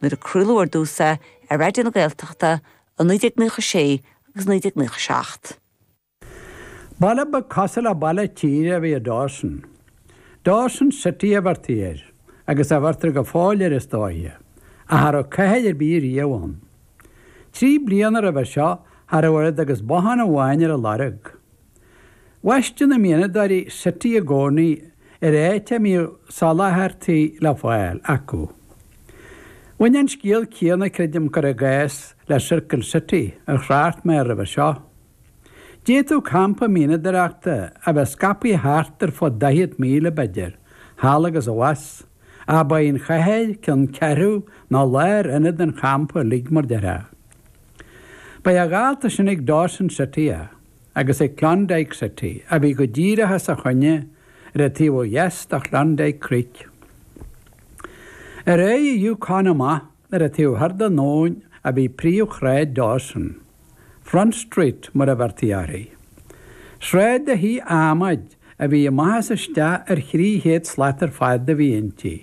nuair a craoladh ar dtús é ar Raidió na Gaeltachta i 1996 agus 1997. Baile beag cosúil le baile tíre a bhí i Dawson. Dawson City a bheirtí air, agus a bheirtear go fóill air is dóiche, ach cha rabh cathair ar bith riamh ann. Trí bliana roimhe seo cha rabh oiread agus bothán amháin ar a lorg. Bhaisteadh na mianadóirí city i gcónaí ar áit a mbíodh soláthairtí le fáil acu. Bhain an scéal céanna, creidim, cuir i gcás, le Circle City, ar thrácht mé air roimhe seo. D'fhéadfadh campa mianadóireachta a bheith scaipthe thart ar fud daichead míle, b'fhéidir, thall agus abhus, ach ba í an chathair ceanncheathrú nó lárionad an champa uilig, mar déarfá. Ba é a dhalta sin ag Dawson City é. agus ag Klondike City, a bhí go díreach as a choinne ar an taobh ó dheas de Klondike Creek. Ar aghaidh an Yukon amach ar an taobh thoir den abhainn a bhí príomhshráid Dawson, Front Street mar a bheirtí uirthi. Sráid de thithe adhmaid a bhí amach is isteach ar thrí chéad slat ar fad a bhí inti,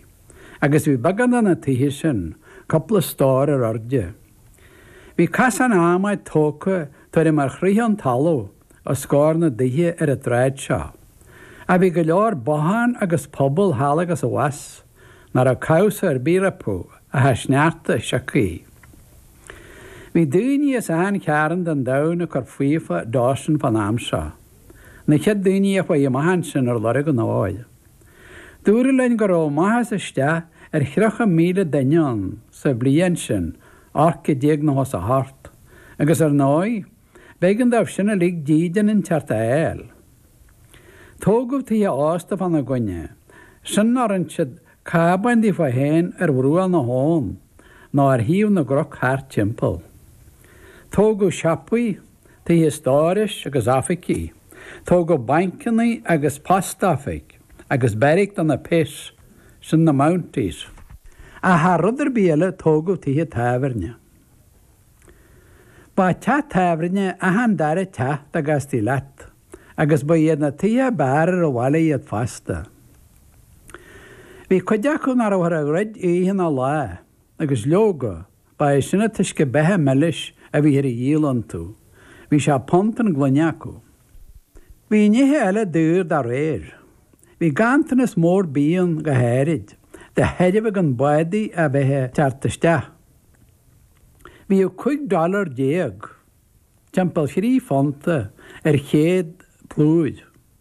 agus bhí beagán de na tithe sin cúpla stór ar airde. Bhí casán adhmaid tógtha tuairim ar throigh ón talamh os comhair na dtithe ar an tsráid seo. Ach bhí go leor bothán agus puball thall agus abhus nach raibh cabhsa ar bith rompu ach an sneachta sioctha. Bhí daoine as achan cearn den domhan ag cur faofa i Dawson fán am seo. Na chéad daoine a chuaidh amach ansin ar lorg an óir. Dúradh linn go raibh amach is isteach ar thríocha míle duine ann sa bhliain sin, 1898, agus ar ndóigh, b'éigean dóibh sin uilig dídean inteacht a fháil. Tógadh tithe ósta fána gcoinne sin nó rinn siad cábáin daofa féin ar bhruach na habhann nó ar thaobh na gcnoc thart timpeall. Tógadh siopaí, tithe stórais agus oifigí. Tógadh bainceanna agus postoifig agus beairic do na péas sin na Mounties. Ach thar rud ar bith eile tógadh tithe tábhairne. Ba teach tábhairne é achan dara teach dá gcastaí leat agus ba iad na tithe ab fhearr ar an bhaile iad fosta. Bhí cuid acu nach rabhthar a dhruid oíche ná lá agus leoga Ba é sin an t-uisce beatha milis a bhíthear a dhíol iontu. Bhí sé punt an gloine acu. Bhí nithe eile daor dá réir. Bhí ganntanas mór bídh ann go háirid de thairbhe gan bádaí a bheith a' teacht isteach. Bhíodh cúig dollar déag, timpeall thrí phunta, ar chéad plúir.